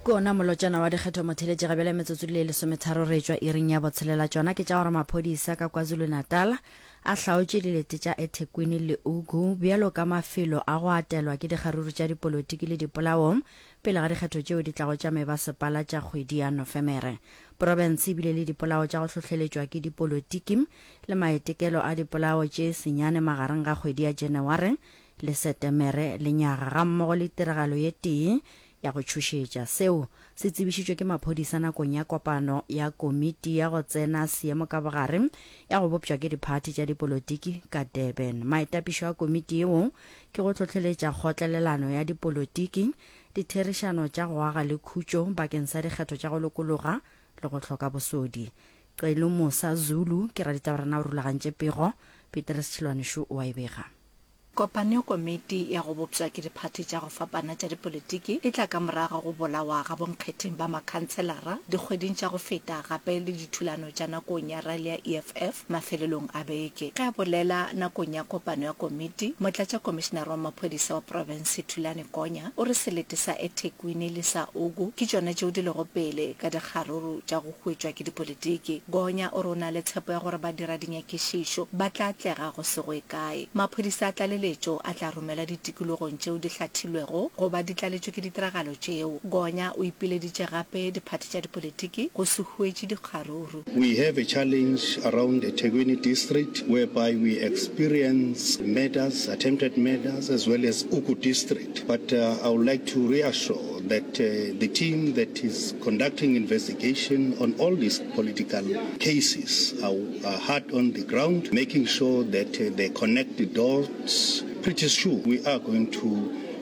kona molotšana wa dikgetho motheletše ga bjale metsotso le lesometharo re tšwa iring ya botshelela tšona ke tša gore maphodisa ka kwazulu-natal a hlaotše dilete tša ethekwini le ugu bjalo ka mafelo a go atelwa ke dikgaruru tša dipolotiki le dipolaong pele ga dikgetho tšeo di tlago tša mebasepala tša kgwedi ya nofemere profense e bile le dipolao tša go hlohleletšwa ke dipolotiki le maetekelo a dipolao tše senyane magareng ga kgwedi ya janaware le Setemere le nyaga gammogo le tiragalo ye tee ya go tšhošetša. Seo se tsebišitšwe ke maphodisa nakong ya kopano ya Komiti ya go Tsena Seemo ka Bogare ya go bopšwa ke diphathi tša dipolotiki ka Durban. Maitapišo a komiti yeo ke go hlohleletša kgotlelelano ya dipolotiki, ditherišano tša go aga le khutšo bakeng sa dikgetho tša go lokologa le go hloka bosodi. Celu Musa, Zulu, ke raditaba rena o rulagantše pego, Peter Sechilwane Shu o a e bega. Kopaneokomiti ya go bopša ke diphathi tša go fapana tša dipolitiki e tla ka morago ga go bolawa ga bonkgetheng ba makhanselara dikgweding tša go feta gape le dithulano tša nakong ya rally ya EFF mafelelong a beke. Ge a bolela nakong ya kopano ya komiti, Motlatšakomišenare wa Maphodisa wa Profense Thulani Konya o re selete sa eThekwini le sa Ogu ke tšona tšeo di lego pele ka dikgaruru tša go hwetšwa ke dipolitiki. Gonya o re o na le tshepo ya gore badiradinyakišišo ba tla atlega go se go e kae. Maphodisa a tlaleletšo a tla romelwa ditikologong tšeo di hlathilwego go ba di tlaletšwe ke ditiragalo tšeo. Gonya o ipileditše gape diphathi tša dipolitiki go se hwetše dikgaruru. We have a challenge around eThekwini district whereby we experience murders, attempted murders as well as Uku district. But uh, I would like to reassure that uh, the team that is conducting investigation on all these political cases are, are hard on the ground, making sure that uh, they connect the dots. Pretty sure we are going to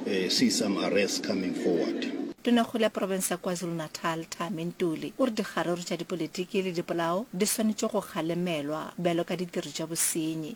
uh, see some arrests coming forward. tonakgolo ya porofense ya kwazulu-natal tame ntuli o re dikgaruru tša dipolotiki le dipolao di swanetše go kgalemelwa bjalo ka ditiro tša bosenyi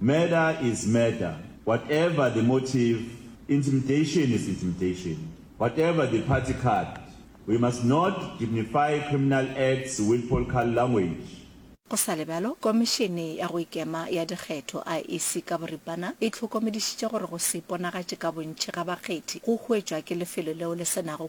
Murder is murder, whatever the motive, intimidation is intimidation, whatever the party card, we must not dignify criminal acts with polcal language. Go sa le bjalo, Komišene ya go Ikema ya Dikgetho, IEC, ka boripana e hlokomedišitše gore go se iponagatše ka bontši ga bakgethi go huetšwa ke lefelo leo le se nago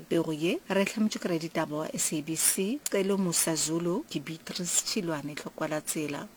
Pego ye re e hlametšwe ke raditaba wa SABC, Celo Musa Zulu, ke Beatrice Tšhilwane Tlhokwalatsela.